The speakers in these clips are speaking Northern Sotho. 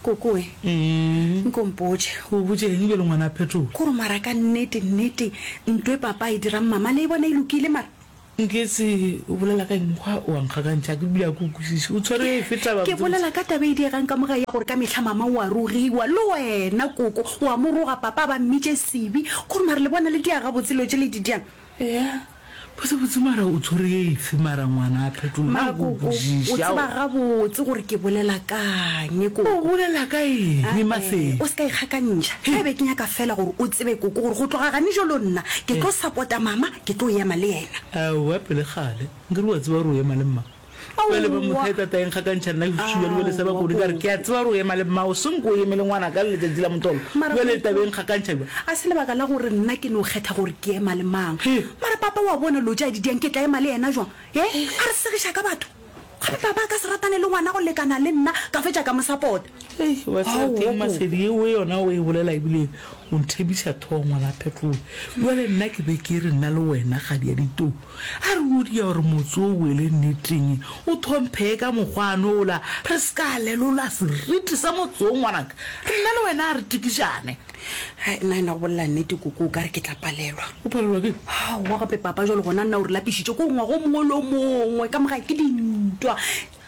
kokoe nkompotše o botšeng bjelo ngwana phetola kore mara ka nnete nnete ntwe papa e dirang mama le e bona e lokile mara nketse o bolela ka enkgwa o ankgakantšha ke bile a ko kwešiše o tshwere e feta ba ke bolela ka taba e diegang ka moga ya gore ka mehla mama o a rogiwa le wena koko o a mo roga papa ba mmitše sebe kore mara le bona le diaga botselo tše le di diang ea Botse botse mara o tshwere efe mara ngwana a phetola Mara go koko, o bušiša tseba gabotse gore ke bolela kang o koko. bolela ka eng Ah, eh, Mahleng? o se ka ikgakantšha ka ebe ke nyaka fela gore o tsebe koko gore go tloga gane jalo nna ke tlo support-a mama ke tlo ema le yena Aowa pele kgale nkere wa tseba gore o ema le mma. Bjale ba mo theta taeng ga ka ntšha nna ke fushiwa le bjale sa ba kone ka re ke a tseba re o ema le mmao seng ko o emele ngwana ka le letšatši la motolo Mara bjale Popo, tabeng ga ka ntšha bja a se lebaka la gore nna ke no kgetha gore ke ema le mang He. mara papa wa bona lo tša didiang ke tla ema le yena jwang e a re segiša ka batho gape papa a ka se ratane le ngwana go lekana le nna ka fetša ka mo sapota Ei, wa tseba Ao, keng wa masedi eo e yona o e bolela ebile o nthebiša thogo ngwana phetloe bjale nna ke be ke re nna le wena kgadi ya ditou A re o dia gore motse o boele nneteng, o thomphee ka mokgwa a no ola, re se ka lelola seriti sa motse wo, ngwanaka. Nna le wena a re tikišane. Hai, nna yena go bolela nnete, koko, o ka re ke tla palelwa. O palelwa ke eng? Aowa gape, papa, jwale gona nna o re lapišitše ke gore ngwaga o mongwe le o mongwe ka morago ke dintwa.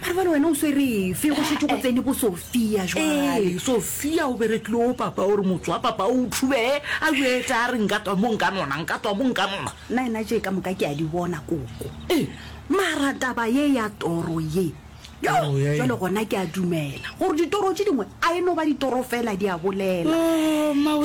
Mara bale wena o swerefe go šetše go tsene bo Sofia jwale. Sofia o berekile o papa o re motho wa papa o thube a jweta a re nka twa mo nka nona nka twa mo nka nona. Nna ena tše ka moka ke a di bona koko. Mara taba ye ya toro ye jwale gona ke a dumela gore ditoro tše dingwe a e no ba ditoro fela di a bolela.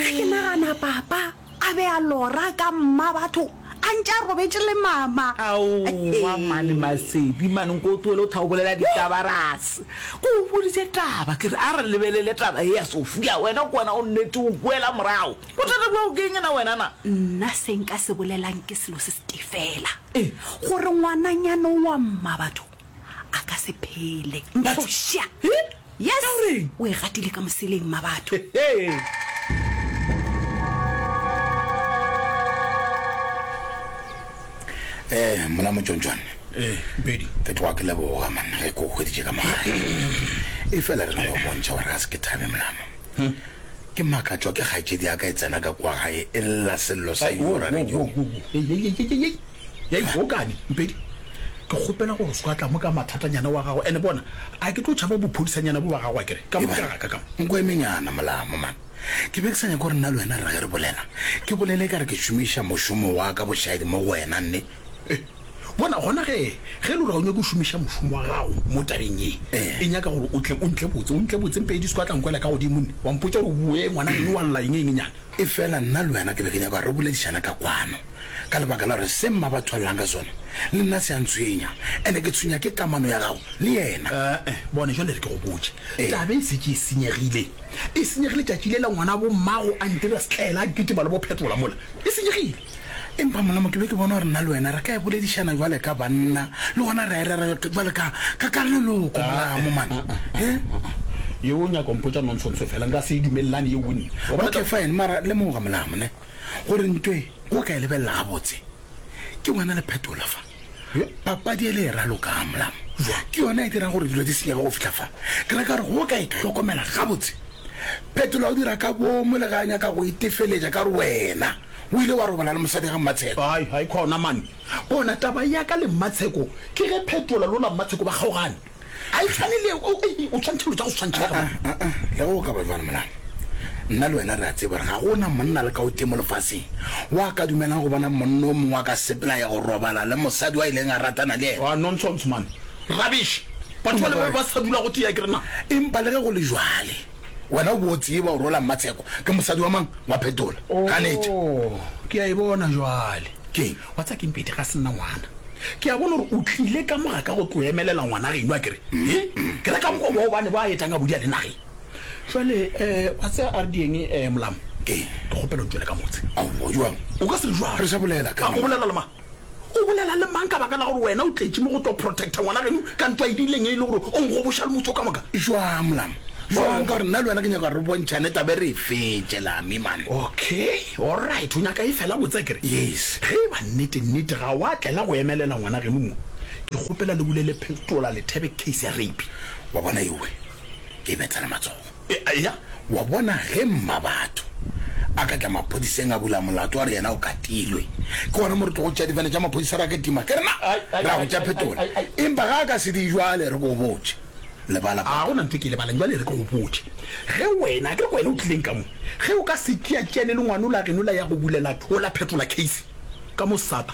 Ke nagana papa. A be a lora ka mmabatho a ntše a robetše le mama. Aowa mane Masedi mane nko o tlohele go thwa o bolela ditaba rase ko o boditše taba ke re a re lebelele taba ye ya Sofia wena ke wena o nnete o boela morago bothata bja o keng na wena na. Nna se nka se bolelang ke selo se se tee fela gore ngwananyana o wa mmabatho a ka se phele mphoša yes o e gatile ka moseleng ma batho Eh, mona motsontswane Eh, Mpedi. ke tloga ke leboga manna ge ke o hweditše ka mogare e fela re na go bontšha gore ga se ke thabe molamo ke makatswa ke kgaetšedi ya ka e tsena ka kwa gae e lla sello sa yora radio Ya ikgwa o kane Mpedi? Ke kgopela gore o seka tla mo ka mathatanyana wa gago ene bona a ke tlo tšhaba bophodisanyana bo ba gago a kere ka mo ka ka ka mo. Nko emenyana Molamo man ke be ke sa nyake gore nna le wena re ge re bolela ke bolele ekare ke šomiša mošomo wa ka bošadi mo go wena nne. Eh bona gona ge ge lo re ga o nyake go šomiša mošomo wa gago mo tabeng ye e nyaka gore o tle o ntle botse o ntle botse Mpedi o seka tla nkwela ka godimo nne wa mpotša gore o boe ngwana eno wa lla eng engenyana. Efela nna le wena ke be ke nyaka gore re boledišane ka kwano. ka lebaka la gore se mma ba thwalelang ka sona le nna se a ntshwenya, ene ke tshwenya ke kamano ya gago le yena. Ee, bone jwale re ke go botše, taba e setse e senyegile, e senyegile tšatši le la ngwana bo mmago a ntira setlaela a kitima le bo phetola mola, e senyegile. Empa molamo ke be ke bona gore nna le wena re ka e boledišana jwale ka banna, le gona ra e rera jwale ka ka leloko molamo man. Yo o nyaka mpotša nonsense fela nka se e dumelelane yeo nna. Okay fine mara lemoga molamo ne. Gore ntwa e o ka e lebelela gabotse, ke ngwana le phetola fa. Papadi e le e raloka ga molamo. Ke yona e dirang gore dilo di senyege go fitlha fa. Ke reka gore go ka e tlhokomela gabotse, phetola o dira ka bomo le ga a nyaka go itefeletša ka gore wena o ile wa robala le mosadi ga Mmatsheko. Hai, hai khona mane. Bona, taba ya ka le Mmatsheko ke ge phetola lo la Mmatsheko ba kgaogane. a e tshwane le o o tshwantšha dilo tsa go swantšha ka bana. Ah, ah, ah, le go ka ba jwalo molala nna le wena re a tseba gore ga go na monna le ka o teng mo lefaseng wa ka dumelang go bona monna o mongwe a ka sepela ya go robala le mosadi wa e leng a ratana le ena Ah, nonsense man. Rubbish. Batho ba le ba ba sa dula go tea ke re na. empa le ge go le jwale Wena o be o tseba gore ola Mmatsheko ke mosadi wa mang? Wa Phetola. Ganetše. Oh, ke a e bona jwale. Keng? Wa tsa keng Pete ga se nna ngwana. Ke a bona gore o tlile ka moga ka go tlo emelela ngwana geno a kere. He? Ke re ka mogo bo bane ba etang a bodia le nageng. Jwale eh wa tse a re dieng eh Molamo. Keng? Ke kgopela o tšwele ka motse. Ao, joang? O ka se re joang? Re sa bolela ka. Ka go bolela le mang? O bolela le mang ka baka la gore wena o tletše mo go tlo protecta ngwana geno ka ntwa e dileng e le gore o ngoboša le motse o ka moka? Jwang, Mlam? Jwang ka gore nna le wena ke nyaka gore re bontšhane tabe re e fetše, Lami, man. Okay, all right, o nyaka e fela botse akere? Yes. Ge e ba nnete, nnete ga wa tlela go emelela ngwana geno mo, ke kgopela le bule le phestola lethebe case ya rape. Wa bona ewe, ke e betsela matsogo. Eya, wa bona, ge Mmabatho a ka tla maphodiseng a bula molato a re yena o katilwe, ke gona mo re tlogo tšea difane tša maphodisa ra kitima, ke re na ra go tša phetola. Empa ga a ka se di jwale, re go botše. Lebala, Ga go na ntho e ke e lebalang. Jwale re tlo go botše ge wena, akere ke wena o tlileng ka mo, ge o ka se tšea tšeane le ngwanola geno la ya go bulela Thola phetola case ka mo Sato.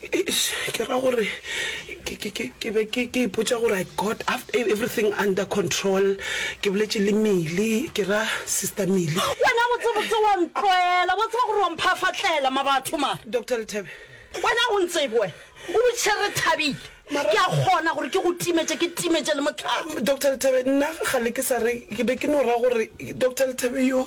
Eish, ke ra gore ke ke ke ke be ke ke ipotša gore I got after e- everything under control. Ke boletše le Milly, ke ra, Sister Milly. Wena botsebotse wa ntloela, wa tseba gore wa mphafatlela ma batho ma. Doctor Lethabe. Wena o ntsebe wena, o botšiše re thabile. Mara- Ke a kgona gore ke go timetše, ke timetše le motlhaba. Doctor Lethabe, nna kgale ke sa re, ke be ke no ra gore Doctor Lethabe yoo.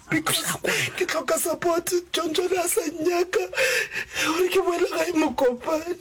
Ke tlhoka support. John John a sa nnyaka gore ke boele gae Mokopane.